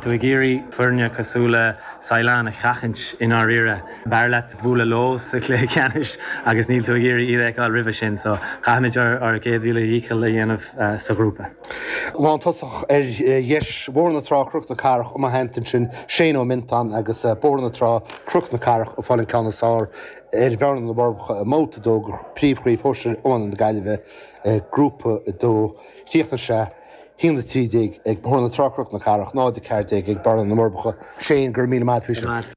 tú ag iarraidh foirne cosúil le Saighleán a sheachaint i ndáiríre, b'fhearr leat bualadh leo sa chluiche ceannais agus níl tú ag iarraidh iad a fheiceáil roimhe sin, so caithfimid ár gcéad mhíle dhícheall a dhéanamh sa ghrúpa. Lántosach ar dheis, Bóthar na Trá, Cnoc na Cathrach, i mo theannta ansin Shane Ó Miontáin agus Bóthar na Trá, Cnoc na Cathrach ag fáil an ceann is fearr ar Bhearna na bhForbacha i mbabhta a dó de Phríomh-Chraobh Shóisir Iomána na Gaillimhe, Grúpa 2, chríochnaigh. haon a trí déag ag Bóthar na Trá-Cnoc na Cathrach, náid a ceathair déag ag Bearna na bhForbacha. Shane, go raibh míle maith agat!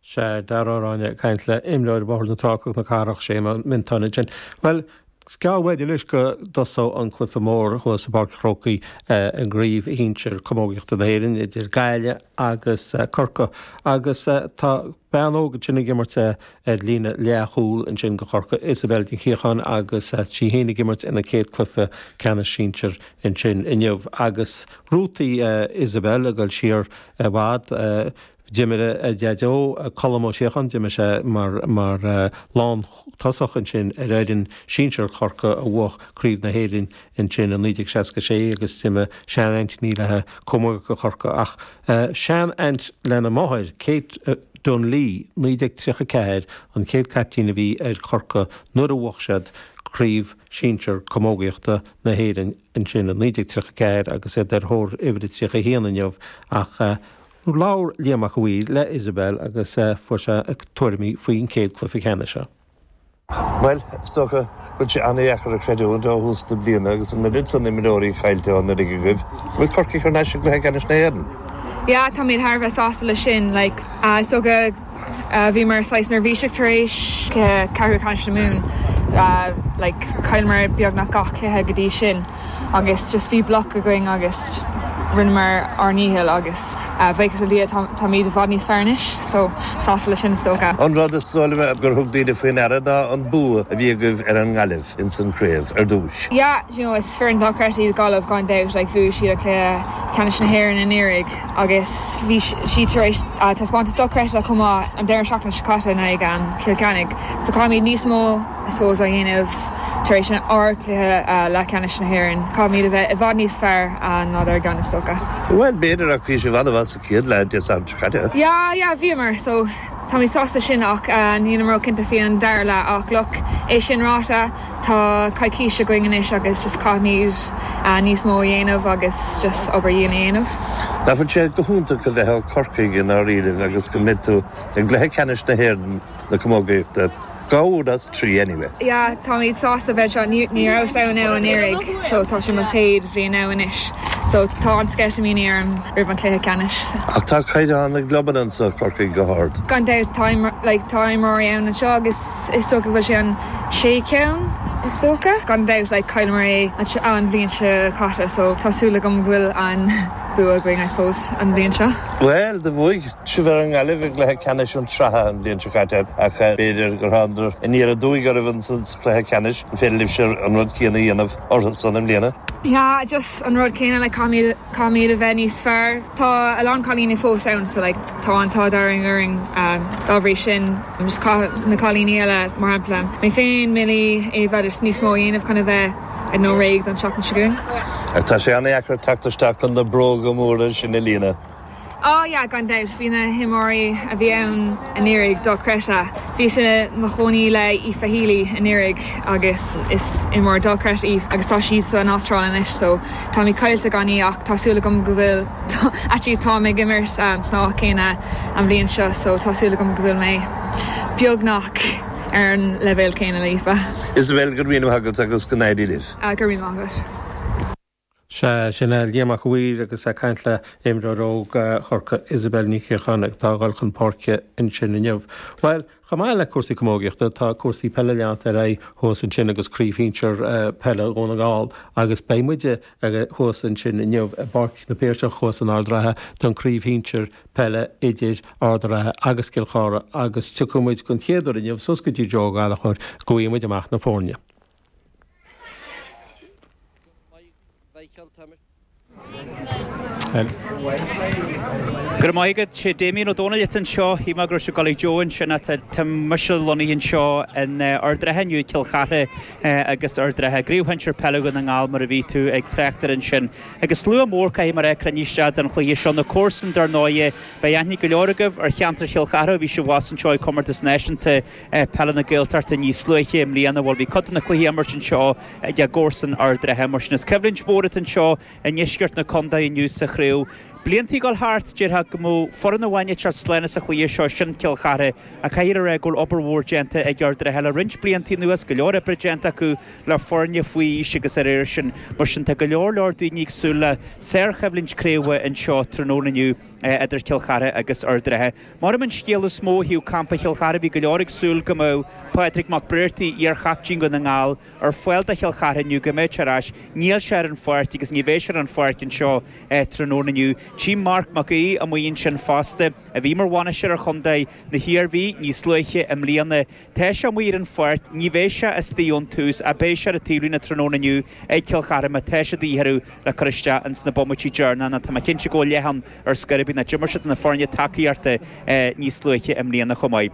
Sea, Dara Ó Ráinne, ag caint le imreoir Bhóthar na Trá-Cnoc na Cathrach, Shane Ó Miontáin ansin. Bhuel, is gearr uainn anois go dtosóidh an cluife mór thuas i bPáirc an Chrócaigh i gCraobh Shinsir Camógaíochta na hÉireann idir Gaillimh agus Corcaigh agus tá bean óg ansin ag imirt ar líne leath-chúl ansin do Chorcaigh, Isobel Nic Shíocháin agus í fhéin ag imirt ina céad cluiche ceannais sinsir ansin inniu agus rútaí Isobel ag dul siar i bhfad, d'imir a Daideo, Colm Ó Síocháin, d'imir sé mar lántosach ansin ar fhoireann sinsir Chorcaí a bhuaigh craobh na hÉireann Ansin i 1966 agus d'imir seanaintín léithi camógaíocht do Chorcaigh ach seanaint lena máthair, Kate Dunlea, 1934 an chéad caiptín a bhí ar Chorcaigh nuair a bhuach siad Craobh Sinsir Camógaíochta na hÉireann ansin i 1934 agus iad ar thóir uimhir a 31 inniu ach labhair Liam Mac a' Mhaoir le Isobel agus fuair sé tuairimí faoin chéad cluiche ceannais seo Bhuel, is dócha go bhfuil sé an-deacair a chreidiúint ó thús na bliana agus an oiread san imreoirí caillte ó anuraidh agaibh, go bhfuil Corcaigh thar n-ais i gcluiche ceannais na hÉireann. Yeah, táimid thar a bheith sásta leis sin, like, is dócha bhíomar saghas neirbhíseach tar éis cluiche ceathrú ceannais na Mumhan, like, chailleamar beagnach gach cluiche go dtí sin. agus just bhí bloc againn agus rinneamar ár ndícheall agus buíochas le Dia táimid i bhfad níos fearr anois so sásta leis sin is dócha. An rud is dóigh liom gur thug daoine faoi ndeara ná an bua a bhí agaibh ar an nGaillimh ins an craobh ar dtúis. Yeah do you know is foireann dochreidte iad Gaillimh gan dabht like bhuaigh siad an cluiche ceannais na hÉireann anuraidh agus bhí siad tar éis taispeántas dochreidte chomh maith an deireadh seachtaine seo caite in aghaidh Cill Chainnigh so caithfimid níos mó I suppose, a dhéanamh tar éis an, ár cluiche leathcheannais na hÉireann. Caithfimid a bheith i bhfad níos fearr ná dár gceann, is dócha. Bhuel, b'fhéidir, ach bhí sibh an-mhaith sa chéad leath Dé Sathairn seo caite. Yeah, yeah, bhíomar. So, táimid sásta sin ach nílim róchinnte faoi an dara leath. Ach, look, é sin ráite, tá coicís againn anois agus just caithfimid níos mó a dhéanamh agus just obair dhian a dhéanamh. D'athraigh sé go hiontach a bheith ó Chorcaigh i ndáiríribh agus go mbeidh tú i gcluiche ceannais na hÉireann. na camógaíochta, dhá uair as trí anyway. Yeah, táimid sásta bheith anseo, ní, ní rabhas ann anuraidh so tá sé mo chéad bhliain ann anois so tá an-sceitimíní orm roimh an cluiche ceannais. Ach tá caighdeán na gclubanna anseo i gCorcaigh go hard, gan dabht, tá, like, tá imreoirí ann anseo agus is dócha go bhfuil sé an sé cheann is dócha, gan dabht, like, chailleamar é an bhliain seo caite so tá súil agam go bhfuil an bua againn I suppose an bhliain seo. Bhuel, do bhuaigh Sibh ar an nGaillimh i gcluiche ceannais na Sraithe an bhliain seo caite ach b'fhéidir gur thánadar aniar aduaidh oraibh ansan sa chluiche ceannais, an féidir libhse an rud céanna a dhéanamh orthusan i mbliana? Yeah just an rud céanna like caithfimid, caithfimid a bheith níos fearr, tá a lán cailíní fós ann so like tá an t-ádh dearg orainn dá bhrí sin just caithfidh na cailíní eile mar shampla mé féin, Milly, Éabha just níos mó a dhéanamh chun a bheith I don't know réidh don tseachtain seo chugainn. Ach tá sé an-deacair teacht isteach chun na bróga móra sin a líonadh. Ó, yeah, gan dabht, bhí na himreoirí a bhí ann anuraidh dochreidte. Bhíos i mo chónaí le Aoife Healy anuraidh agus is imreoir dochreidte í agus tá sí san Astráil anois so táimid caillte gan í ach tá súil agam go bhfuil, actually táim ag imirt san áit chéanna an bhliain seo so tá súil agam go bhfuil mé beagnach ar an leibhéal céanna le hAoife. Isabelle, go raibh míle maith agat agus go n-éirí libh. Go raibh míle maith agat. Sea, sin é Liam Mac Uidhir agus é ag caint le imreoir óg Chorcaí, Isabelle Ní Shíocháin, atá ag dul chun páirce ansin inniu. Bhuel, chomh maith le cúrsaí camógaíochta, tá cúrsaí peile leanta ar aghaidh thuas ansin agus craobh shinsear peile Dhún na nGall agus beidh muid thuas ansin inniu i bPáirc na Piarsach thuas in Ard an Rátha don craobh shinsear peile idir Ard an Rátha agus Cill Chartha agus gabhfaidh muid den chéad uair inniu suas go dtí Joe Ó Gallachóir go bhfaighe muid amach na foirne. Go raibh maith agat. Sé Damien Ó Dónaill atá anseo. Shíl mé go raibh sé ag gabháil chuig Joe ansin ach tá tá mise lonnaithe anseo in Ard an Rátha inniu, Cill Chartha agus Ard an Rátha. Craobh Shinsear Peile Dhún na nGall mar a bhí tú ag trácht air ansin. Agus slua mór caithfidh mé a rá ag cruinniú isteach don chluiche seo. Na comharsain dar ndóighe. Beidh aithne ag go leor agaibh ar cheantar Chill Chartha ó bhí sibh abhus anseo ag Comórtas Náisiúnta. Peile na Gaeltachta níos luaithe i mbliana. Bhuel, bhí cuid de na cluichí á n-imirt anseo ag a gcomharsain Ard an Rátha. Mar sin is coimhlint mhór atá anseo i ndeisceart na Contae inniu sa chraobh. Blianta ag dul thart, déarfá go mbeadh foireann amháin ag teacht slán sa chluiche seo, sin Cill Chartha. Ach caithfear a rá go bhfuil obair mhór déanta ag Ard an Rátha le roinnt blianta anuas, go leor oibre déanta acu le foirne faoi aois agus dá réir sin. Mar sin tá go leor, leor daoine ag súil le sárchoimhlint craoibhe anseo tráthnóna inniu idir Cill Chartha agus Ard an Rátha. Maireann an scéal is mó ó thaobh campa Chill Chartha, bhí go leor ag súil go mbeadh Pádraig Mac Breartaigh, iar-chaiptín Dhún na nGall, ar fáil do Chill Chartha inniu, go mbeadh sé ar ais. Níl sé ar an pháirc agus ní bheidh sé ar an pháirc anseo tráthnóna inniu. Tchím Marc Mac Aoidh amuigh ansin fosta, a bhí mar bhainisteoir ar chontae na hIarmhí níos luaithe i mbliana, Tá sé amuigh ar an pháirc, ní bheidh sé istoigh ón tús, ach beidh sé ar an taobhlíne tráthnóna inniu ag Cill Chartha má tá sé de dhíth orthu le cur isteach ins na bomaití deireanacha, tá mé cinnte go bhfuil leath ann ar scor ar bith nó d'imir sé do na foirne tacaíochta níos luaithe i mbliana chomh maith.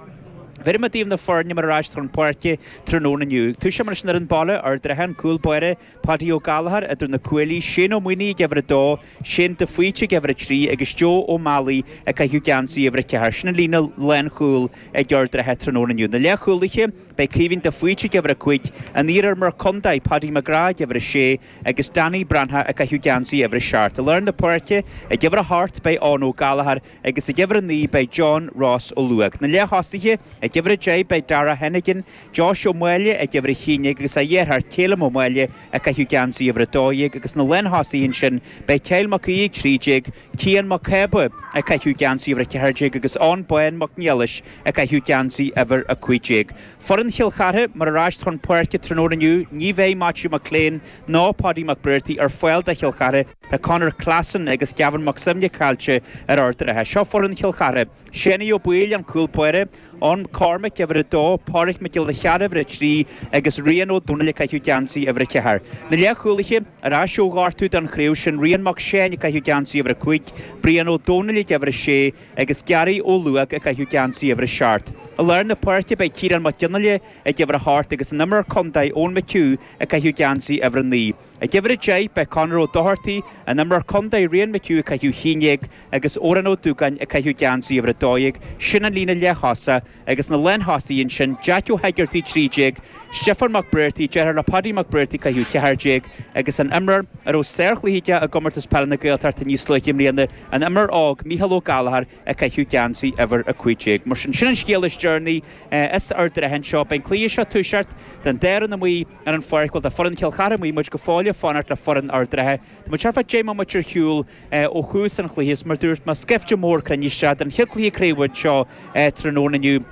Bhéarfaidh mé daoibh na foirne mar a rachas siad chun páirce tráthnóna inniu. Toiseoidh muid leis an fhoireann baile, Ard an Rátha, an cúl báire, Padaí Ó Gallchóir idir na cuaillí, Shane Ó Maoinigh ag uimhir a dó, Shane de Faoite ag uimhir a trí agus Joe Ó Meallaigh ag caitheamh geansaí uimhir a ceathair. Sin an líne lánchúil ag Ard an Rátha tráthnóna inniu. Na leathchúlaithe, beidh Caoimhín de Faoite ag uimhir a cúig, an t-iar-iarmhar contae Padaí McGrath ag uimhir a sé agus Danny Breathnach ag caitheamh geansaí uimhir a seacht. I lár na páirce, ag uimhir a hocht, beidh Eoin Ó Gallchóir agus ag uimhir a naoi, beidh John Ross Ó Luóg. Na leath-thosaithe, ag uimhir a deich, beidh Darragh Heneghan, Josh Ó Máille ag uimhir a haon déag agus a dheartháir Calum Ó Máille ag caitheamh geansaí uimhir a dó dhéag agus na lántosaithe ansin beidh Kyle Mac Aoidh ag trí déag, Cian Mac Cába ag caitheamh geansaí uimhir a ceathair déag agus Eoin Bán Mac Niallais ag caitheamh geansaí uimhir a cúig déag. Foireann Chill Chartha mar a rachas siad chun páirce tráthnóna inniu ní bheidh Maitiú McClean ná Padaí Mac Breartaigh ar fáil do Chill Chartha tá Conor Classon agus Gavin Mac Suibhne caillte ar Ard an Rátha. Seo foireann Chill Chartha. Séanie Ó Baoill, an cúl báire, Eoin McCormick, uimhir a dó, Pádraig Mac Giolla Cheara, uimhir a trí, agus Rian Ó Domhnaill ag caitheamh geansaí uimhir a ceathair. Na leathchúlaithe, ar ais ó ghortú don chraobh sin, Rian Mac Seáin ag caitheamh geansaí uimhir a cúig, Brian Ó Domhnaill ag uimhir a sé, agus Gary Ó Luóg ag caitheamh geansaí uimhir a seacht. I lár na páirce beidh Ciarán Mac Fhionnaile ag uimhir a hocht agus an imreoir contae Eoin McHugh ag caitheamh geansaí uimhir a naoi. Ag uimhir a deich, beidh Conor Ó Dochartaí, an imreoir contae, Rian McHugh ag caitheamh haon déag agus Odhrán Ó Dúgáin ag caitheamh geansaí uimhir a dó dhéag, sin an líne leath-thosaigh, agus na lántosaithe ansin, Jeaic Ó hEigeartaigh, trí déag, Stiofán Mac Breartaigh, deartháir le Padaí Mac Breartaigh ag caitheamh ceathair déag, agus an imreoir a raibh sárchluiche aige i gComórtas Peile na Gaeltachta níos luaithe i mbliana, an imreoir óg, Micheál Ó Gallchóir ag caitheamh geansaí uimhir a cúig déag. Mar sin, sin an scéal is deireanaí as Ard an Rátha anseo. Beidh an cluiche seo ag toiseacht, tá an dá fhoireann amuigh, ar an pháirc. Bhuel, tá foireann Chill Chartha amuigh, muid go fóill ag fanacht le foireann Ard an Rátha. Tá muid thart fá dheich mbomaite ar shiúl ó thús an chluiche, is mar a dúirt mé, scaifte mór cruinnithe isteach don chéad chluiche craoibhe anseo tráthnóna inniu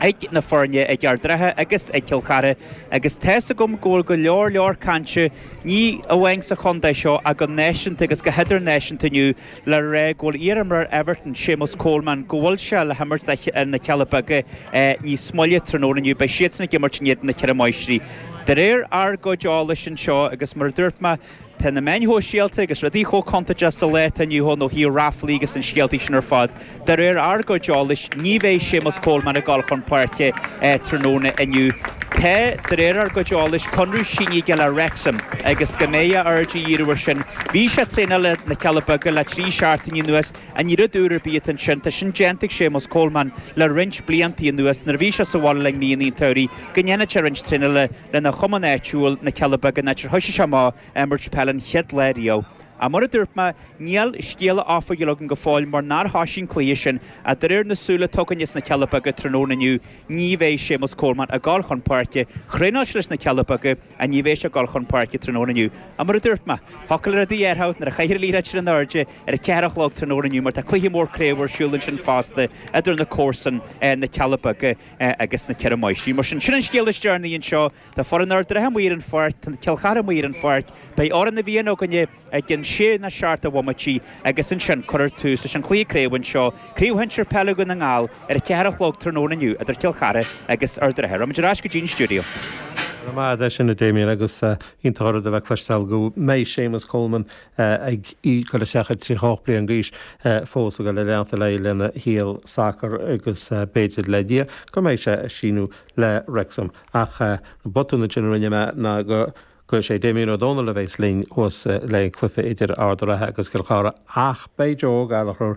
ag na foirne, ag Ard an Rátha agus ag Cill Chartha agus tá's agam go bhfuil go leor leor cainte, ní amháin sa chontae seo ach go náisiúnta agus go hidirnáisiúnta inniu. le rá go bhfuil iarimreoir Everton, Seamus Coleman, go bhfuil sé le himirt do na Cealla Beaga níos moille tráthnóna inniu. Beidh siadsan ag imirt in éadan na Ceithre Máistrí, de réir ár gcuid eolais anseo, agus mar a dúirt mé, tá na meáin shóisialta agus rudaí chomh contúirteach sa lá atá inniu ann ó thaobh ráflaí agus na scéalta sin ar fad. De réir ár gcuid eolais, ní bheidh Séamus Coleman ag dul chun páirce tráthnóna inniu. Tá, de réir ár gcuid eolais, conradh sínithe aige le Wrexham agus go mbeidh a aird á dhíriú air sin. Bhí sé ag traenáil le na Cealla Beaga le trí seachtaine anuas ach ní rud úr ar bith atá ansin. Tá sin déanta ag Séamus Coleman le roinnt blianta anuas. Nuair a bhí sé sa bhaile le linn míonna an tsamhraidh, go ndéanfadh sé roinnt traenála lena chumann áitiúil, na Cealla Beaga, an áit ar thoisigh sé amach ag imirt peil an chéad lá riamh. Ach mar a dúirt mé, níl scéala oifigiúil againn go fóill mar nár thoisigh an cluiche sin ach de réir an scéala atá againn as na Cealla Beaga tráthnóna inniu, ní bheidh Séamus Coleman ag gol chun páirce, thraenáil sé leis na Cealla Beaga, ach ní bheidh sé ag gol chun páirce tráthnóna inniu. Ach mar a dúirt mé, thiocfadh le rudaí athrú nuair a chaithfear an liathróid sin in airde ar a ceathair a chlog tráthnóna inniu mar tá cluiche mór craobh ar siúl ansin fosta idir na comharsain, na Cealla Beaga agus na Ceithre Máistrí. Mar sin, sin an scéal is deireanaí anseo. Tá foireann Ard an Rátha amuigh ar an pháirc, tá Cill Chartha amuigh ar an pháirc, beidh Amhrán na bhFiann againn i gceann sé nó seacht de bhomaití agus ansin cuirfear tús leis an chluiche craobh anseo, Craobh Shinsir Peile Dhún na nGall, ar a ceathair a chlog tráthnóna inniu idir Cill Chartha agus Ard an Rátha. Rachaidh muid ar ais go dtí an stiúideo. Go raibh maith agat as sin, a Damien, agus iontach an rud a bheith ag cloisteáil go mbeidh Séamus Coleman ag goil isteach ar 38 bliain d'aois fós ag goil a leanúint ar aghaidh lena shaol sacair agus b'fhéidir, le Dia, go mbeidh sé ag síniú le Wrexham, ach botún ansin a rinne mé ná gur sé Damien Ó Dónaill a bheas linn thuas leis an chluiche idir Ard an Rátha agus Cill Chartha ach beidh Joe Gallagher